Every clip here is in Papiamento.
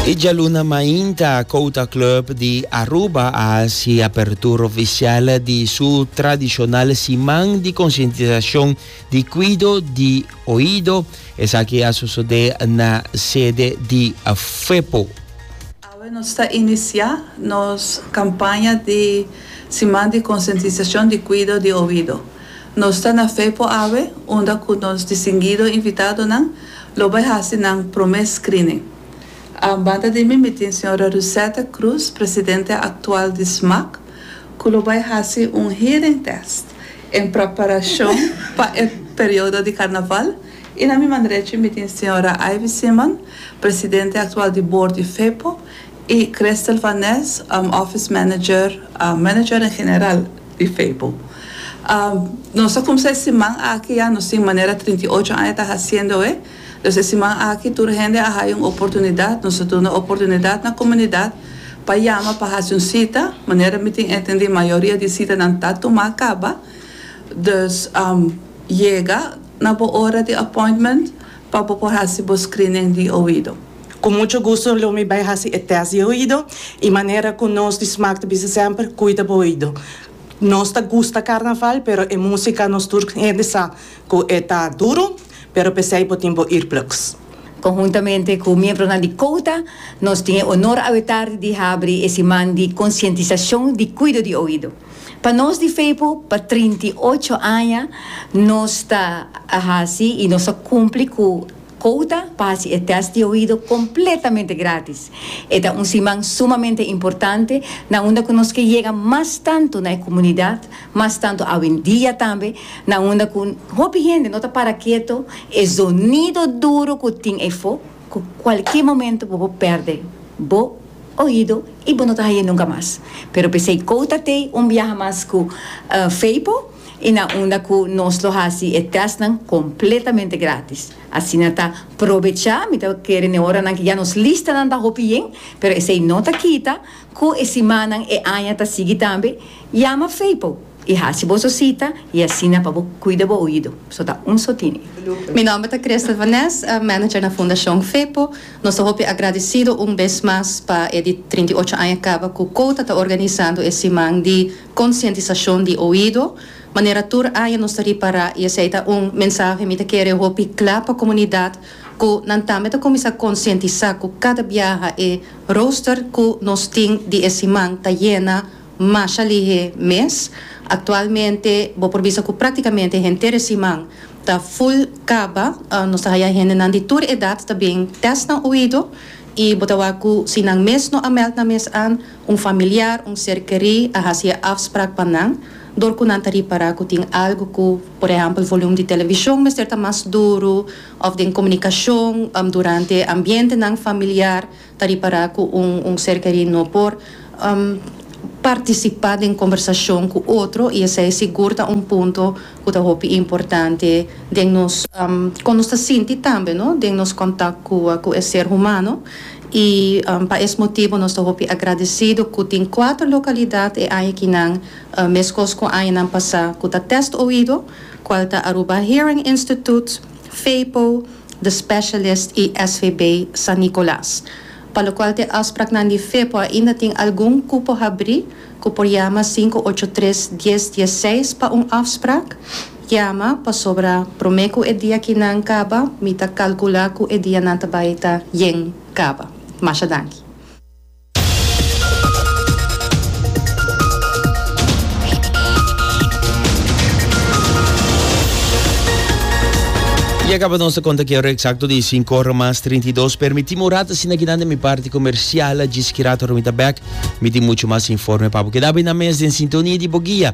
E djaluna mainta Kouta Club di Aruba a hasi apertura oficial di su tradicional siman di concientizacion di cuido di oido. Esaki a sosode na sede di Fepo. Awe nos ta inicia nos campaña di siman di concientizacion di cuido di oido. Nos ta na Fepo awe unda cu nos distinguido invitadonan Lo bai hasi nan promé screening. A banda di mi mi tin señora Rusetta Cruz, presidente actual di SMAC, cu lo bai hasi un hearing test en preparacion pa e periodo di Carnaval y na mi man derecho mi tin señora Ivy Simon, presidente actual di board di FEPO y Christel van Nes, office manager, manager en general, di Feipo. Nos a kumsa e siman aki ya, nos tin manera trinta i ocho aña ta hasiendo e. Dus e siman aki tur hende a haya un oportunidat, nos a duna oportunidat na komunidat pa yama pa hasi un sita. Manera mi tin entendí mayoria di sitanan ta tumá kaba. Dus yega na bo ora di appointment. Pa bo por hasi bo screening di oido. Cu mucho gusto lo mi bay haci e test di oido y manera cu nos di Smaak ta bisa semper, cuida bo oido. Nos ta gusta carnaval pero e musica nos tur hende sa cu e ta duro pero pesey bo tin bo earplugs. Conhuntamente cu miembronan di Cota nos tin e honor awe tardi di habri e siman di concientisacion di cuido di oido. Pa nos di Feipo, pa trinta i ocho aña nos ta a hasi i nos a kumpli ku kouta pa hasi e tèst di oido kompletamente gratis. E ta un siman sumamente importante na unda ku nos ke yega mas tantu na e komunidat, mas tantu awendia tambe, na unda ku hopi hende no ta para keto, e zonido duru ku tin ei fo, ku kualke momentu bo por pèrdè bo. Oido y bo no ta haya nunca mas. Pero pesey Cou ta tey un biaha mas cu Feipo y na unda cu nos lo haci e testnan completamente gratis. Asina ta probecha mi ta kere n'e oranan cu ya nos listanan ta hopi yen, pero esey no ta kita cu e simannan e aña ta sigui tambe, yama Feipo y haci boso cita y asina pa bo cuida bo oido. So ta un so tini. Mi nomber ta Christel Van Nes, manager na Fundacion Feipo. Nos ta hopi agradecido un bes mas pa e di trinta i ocho aña caba cu Cota ta organisando e siman di concientisacion di oido. Manera tur aña nos ta ripara y esey ta un mensahe mi ta kere hopi cla pa comunidad cu nan tambe ta cuminsa concientisa cu cada biaha e rooster cu nos tin di e siman ta yena Masha lihe mes. Actualmente bo por bisa cu practicamente henter e siman ta full caba. Nos ta haya hendenan di tur edad ta bin test nan oido y bo ta wak cu si nan mes no a meld nan mes an, un familiar, un ser keri a haci e afspraak pa nan door cu nan ta ripara cu tin algo cu, por ehempel volume di television mester ta mas duru of den comunicacion durante ambientenan familiar. ta ripará ku un un ser kerí no por partisipá den kombersashon ku otro i esei sigur ta un punto ku ta hopi importante den nos kon nos ta sinti tambe no den nos kontak ku ku e ser humano i pa es motibu nos ta hopi agradesido ku tin kuater lokalidat e aña kinan meskos ku añanan pasá ku ta Test Oido kual ta Aruba Hearing Instituut, FEIPO, The Specialist i SVB San Nicolas, pa lokual t'e afspraknan di Fepo ainda tin algun kupo habrí ku por yama sinku ocho tres dies dies seis pa un afsprak. Yama, pasobra promé ku e dia kinan kaba mi ta kalkulá ku e dianan ta bai ta yen kaba. Masha danki. Y acaba nos ta conta que ora exacto di cinco ora mas trinta y dos. Permitime un rato asina kinan de mi parte comercial. Djis ki rato mi ta back. Mi tin mucho mas informe pa bo. Keda bay na mes den sintonia di bo guia.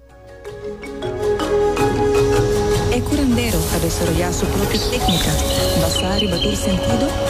E curandero ta desaroyá su propio téknika basá riba tur sentido.